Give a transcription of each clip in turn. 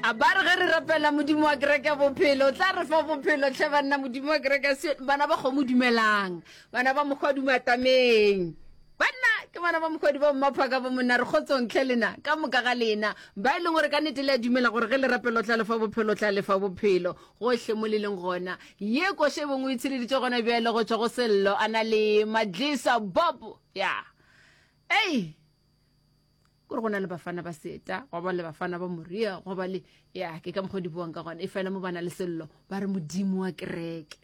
a ba re ge re rapela modimo wa kereke ya bophelo o tla re fa bophelo tlhe banna modimo wa kereke se bana ba kgomo dumelang bana ba mokgwa dumatameng banna ke bana ba mokgwadi ba mmaphaka ba monna re kgotsong tlhe lena ka moka ga lena ba e leng gore ka nete le a dumela gore ge le rapela o tla lefa bophelo o tla lefa bophelo gohle mo le leng gona ye koše e bongwe e tshireditse gona bjale go tswa go sello a na le madlisa bob ya yeah. ei hey. kore go na le bafana ba seta go ba le bafana ba moria go ba le ya ke ka mokgwa di buang ka gona e fela mo bana le sello ba re modimo wa kereke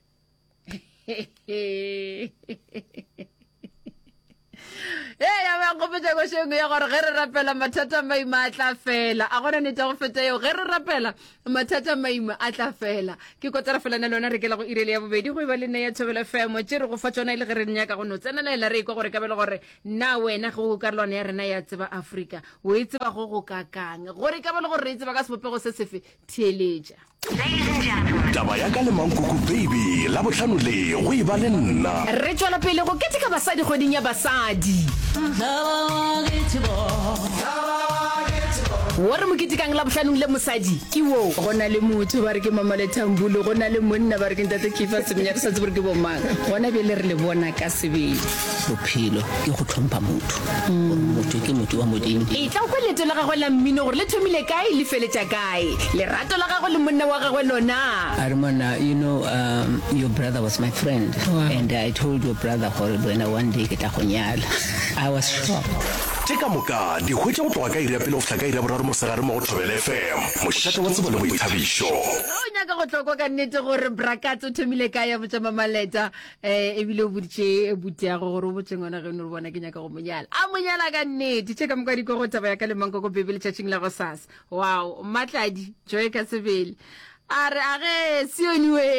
e ya ba nkgopetsa ko shengwe ya gore ge re rapela mathata maima a tla fela a gona nete go feta eo ge re rapela mathata maima a tla fela ke kotara fela na lona re kela go irele ya bobedi go e ba le nne ya thobela femo tse re go fa tsona e le ge re nyaka go no tsenelela re ikwa gore ka bele gore Na wena ge o karolwana ya rena ya tseba Afrika, o e tseba go go kakang? Gore e ka ba le gore re e tseba ka sebopego se sefe, theeletša. Taba ya ka le Mankuku Baby Labohlano le go e ba le nna. Re tšwela pele go keteka basadi kgweding ya basadi. Wo re mo ketekang Labohlanong le mosadi ke wo. Go na le motho ba re ke Mamale Tambulo, go na le monna ba re ke Ntate Keefer Semenya, re sa tsebe gore ke bomang. Gona bjale re le bona ka sebele. bophelo ke go tlhompha motho gore motho ke motho wa modimo e tla kwa leto la gagwe la mmino gore le thomile kae le feletša kae lerato la gagwe le monna wa gagwe lona a re monna you know um, your brother was my friend wow. and i told your brother gore wena one day ke tla go nyala i was shocked ke ka moka di hwetša go tloga ka iri ya pele go fihla ka iri ya boraro mosegare mo go thobele fm mošate wa tsebo le boithabišo o nyaka go tlokwa ka nnete gore brakat o thomile ka ya botšamamaleta eh ebile o boditše butiago gore o botse ngwana geno re bona ke nyaka go monyala a monyala ka nnete tše ka moka diko go taba ya ka lemanko ko bebe letšatšing la go sasa wow mmatladi joe ka sebele a re a ge sioniwe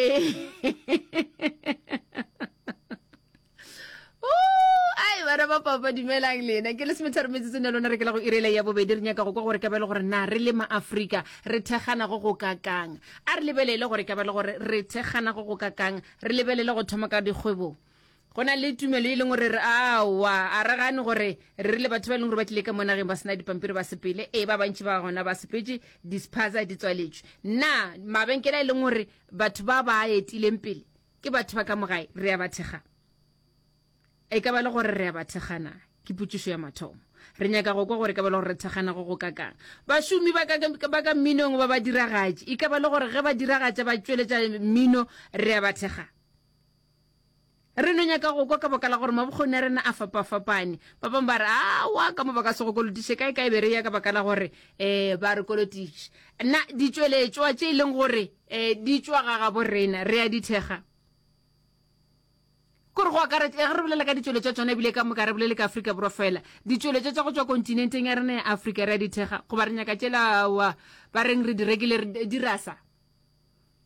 ai bana ba papa dumelang lena ke le semetharo metsetsong ya lona re ke la go irela ya bobedi re nyaka go kwa gore ka ba le gore na re le maaforika re thekganago go kakang a re lebelele gore ka ba le gore re thekganago go kakang Re lebelele go thoma ka dikgwebong. Go na le tumelo e leng gore re aowa, a re gane gore re rile batho ba e leng gore ba tlile ka mo nageng ba sena dipampiri ba sepele, ee, ba bantši ba gona ba sepetše, dispaza di tswaletšwe. Na mabenkele a e leng gore batho ba ba a etileng pele ke batho ba ka mo gae re a ba thekgang? E ka ba e le gore re a ba thekgana? Ke potšišo ya mathomo. Re nyaka go kwa gore e ka ba e le gore re thekgana go go kakang. Bašomi ba ka, ba ka mminong ba badiragatši. E ka ba e le gore ge badiragatša ba tšweletša mmino re a ba thekga? Re no nyaka go kwa ka baka la gore mabokgoni a rena a fapafapane. Ba bangwe ba re, Aowa, ka mo ba ka se go kolotiše. Kae kae be re ya ka baka la gore um ba re kolotiše. Na ditšweletšwa tše e leng gore um di tšwa ga gabo rena re a di thekga? Kore go akaretša, ge re bolela ka ditšweletša tšona, ebile ka moka re bolele ka Afrika Borwa feela, ditšweletša tša go tšwa kontinenteng ya rena ya Afrika re a di thekga, goba re nyaka tšela, aowa, ba reng re di rekile, re di rasa.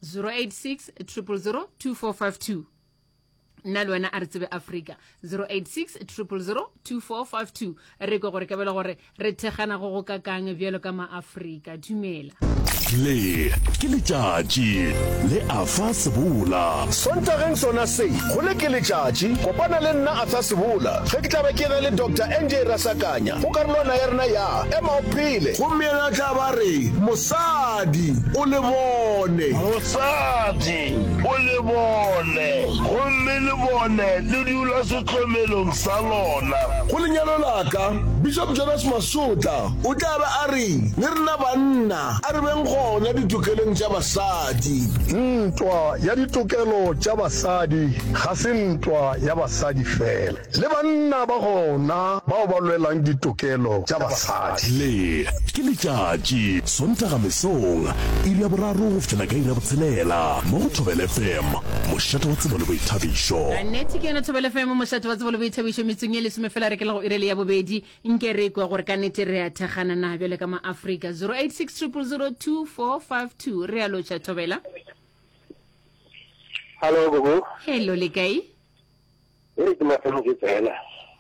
086 000 2452 nna le wena a re tsebe afrika 086 000 2452 re kwe gore ka bele gore Re thekgana go go kakang bjalo ka maAfrika. Dumela. Le ke letšatši le Arthur Sebola. Sontageng sona se, go le ke letšatši, kopana le nna Arthur Sebola ge ke tla be ke ge le Doctor NJ Rasakanya go karolwana ya rena ya Ema o Phele. Gomme yena a tla ba re, Mosadi, o le bone. Mosadi, o le bone. Gomme le bone le dula. Hlomelong sa lona. Go lenyalo la ka, Bishop Jonas Masotla o tla be a re, Le rena banna, a re beng gona ditokelong tša basadi. Ntwa ya ditokelo tša basadi ga se ntwa ya basadi fela. Le banna ba gona bao ba lwelang ditokelo tša basadi. Le, ke letšatši, Sontaga mesong, iri ya boraro go fihlela ka iri ya botshelela, mo go Thobela FM. mošate wa tsebo le boithabišo. Nnete ke yona Thobela FM, mošate wa tsebo le boithabišo, metsong ye lesome fela re ke le go irele ya bobedi. Nke re kwa gore ka nnete re a thekgana na bjale ka maafrika 0860002452 re a lotšha Thobela. Hello gogo. Hello le kae? E re ke mafelong ke tsena.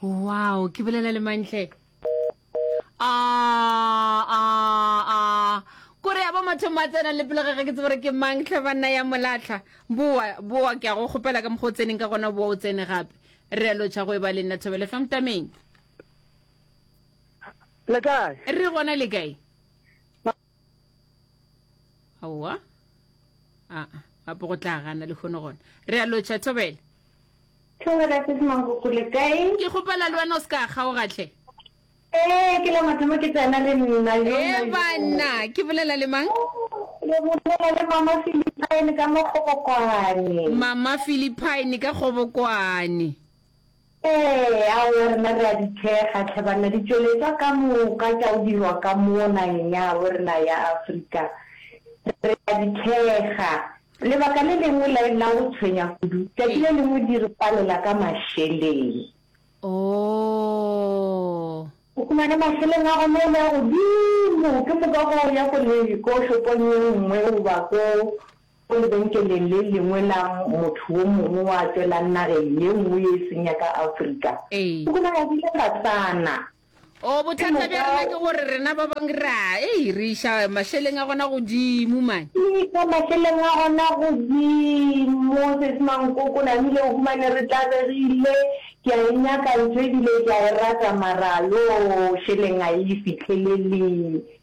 Wow, ke bolela le mantle. kore ya ba mathomo a tsena le pele ga ke tsebore ke mang tlhe banna ya molatlha boa boa ke a go kgopela ka mokgwa o tseneng ka gona boa o tsene gape re a lotšha go e ba le nna thobele fa mtameng le kae re gona le kae aowa aa gape go tla gana le kgone gona re a lotšha thobele thobela se semangoko le kae ke kgopela le wena o se ka kgaogatlhe ee ke la mathomo ke tsena le nna ee banna ke bolela le mang le bolela le mama philipine ka mokgobokwane mama philipine ka kgobokwane Ee, awo, rena re a di thekga, tlhe banna, ditšweletšwa ka moka tša go dirwa ka mo nageng ya gabo rena ya Afrika. Re a di thekga. Lebaka le lengwe la, la go tshwenya kudu, tšatši le lengwe di re palela ka mašeleng. Oo! O fumane mašeleng a gona e le a godimo, ke moka go ya ko le, ko shopong ye nngwe goba ko Go lebenkeleng le lengwe la motho wo mongwe wa tšwelang nageng ye nngwe ye e seng ya ka Afrika, Ee. go bonagagile Batswana. Oo, Ke bothata bja rena ke moka. gore rena ba bangwe ra, ei, re iša mašeleng a gona godimo, man. Re iša mašeleng a gona godimo, Sesi Mankoko, namile o humane re tlabegile, ke a e nyaka ntho e bile ke a e rata mara, yoo, šeleng a e fihlelele.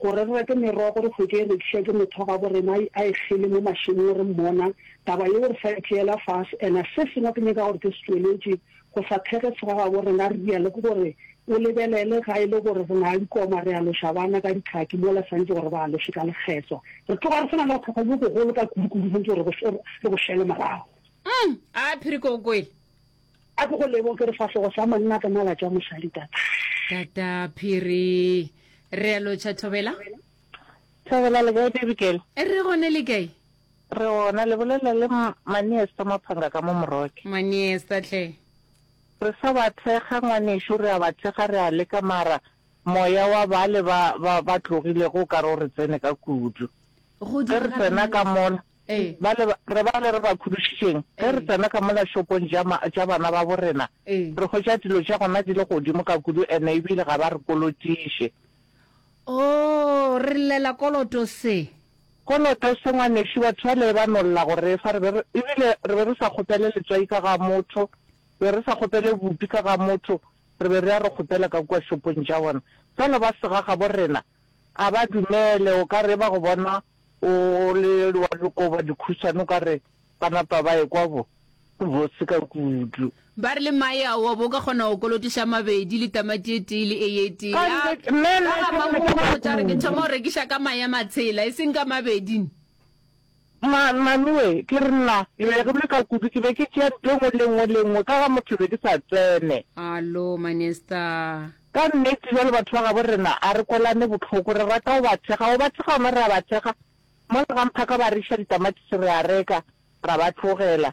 Gore re reke merogo re se ke e rekiša ke motho wa gabo rena a e kgele mo mašemong re mmona, taba yeo re sa e tšeela fase. Ena se sengwe ke nyaka gore ke se tšweletše go sa thekge se ga gabo rena re reale ke gore o lebelele ga e le gore re na le dikoma re aloša bana ka ditlhaki mola santše gore ba aloše ka lekgetlo re tloga re se na le bothata bjo bogolo ka kudukudu santše gore re bo šele morago. Umm, a phiri ke go kwele. A ke go leboge ke re fahlogo sa monna ka mala tša mosadi tata. Tata Phiri. Re a lotšha Thobela. Thobela le kae Bibikele? Re gone le kae? Re gona le bolela le Maniesta Maphanga ka mo Moroke. Maniesta hle. Re sa ba thekga ngwanešu re a ba thekga re a leka mara moya wa bale ba ba ba tlogilego o ka re o re tsene ka kudu. Ge re tsena ka mola Ba le, re ba le re ba khudušitšeng, ge re tsena ka mola šopong tša, tša bana babo rena, re hwetša dilo tša gona di le godimo ka kudu ene ebile ga ba re kolotiše. Oo, re llela koloto se. Koloto se, ngwanešu, batho bale ba no lla go re fa, re be re, ebile re be re sa kgopele letswai ka ga motho, re be re sa kgopele bupi ka ga motho, re be re ya re kgopela ka kua šopong tša bona. Bjalo ba sega gabo rena, ga ba dumele, o ka re e ba go bona O le wa lokoba dikhušana o ka re ba napa ba ekwa bo le botse ka kudu. Ba re le mae ao wa bo o ka kgona go kolotiša a mabedi le tamati e tee le eye e tee. Ya ba ga Makuku o tla re ke thoma go rekiša ka mae a matshela e seng ka mabedi ne. Mmanoe, ke re nna ke be ke le ka kudu ke be ke tšea ntho e nngwe le e nngwe le e nngwe ka ga motho be ke sa tsene. Alo Manesta. Ka nnete, bjalo batho ba gabo rena, a re kwelane bohloko. Re rata go ba thekga. Go ba thekga gona, re a ba thekga. Mola ga mphaka ba re iša ditamatisi, re a reka, ra ba tlogela.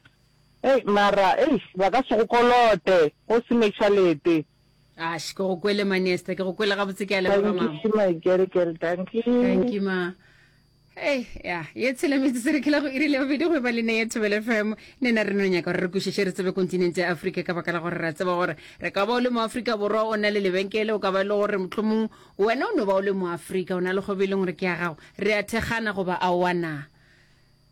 Hei, mara, eish, ba ka se go kolote, go se mešalete. Ash, ke go kwele, ma Nesta. Ke go kwele gabotse, ke a leboga, ma. Dankie, my girl, girl, dankie. Dankie, ma. Hey, ya ye tshela metse se re khela go irile bobedi go e ba le ne ye thobele fm ne na re no nyaka gore re kwešiše re tsebe kontinente ya afrika ka baka la gore ra tseba gore re ka ba o le moafrika borwa o na le lebenkele o ka ba e le gore mohlomong wena o no ba o le moafrika o na le kgobe e leng gore ke ya gago re a thekgana goba aowa na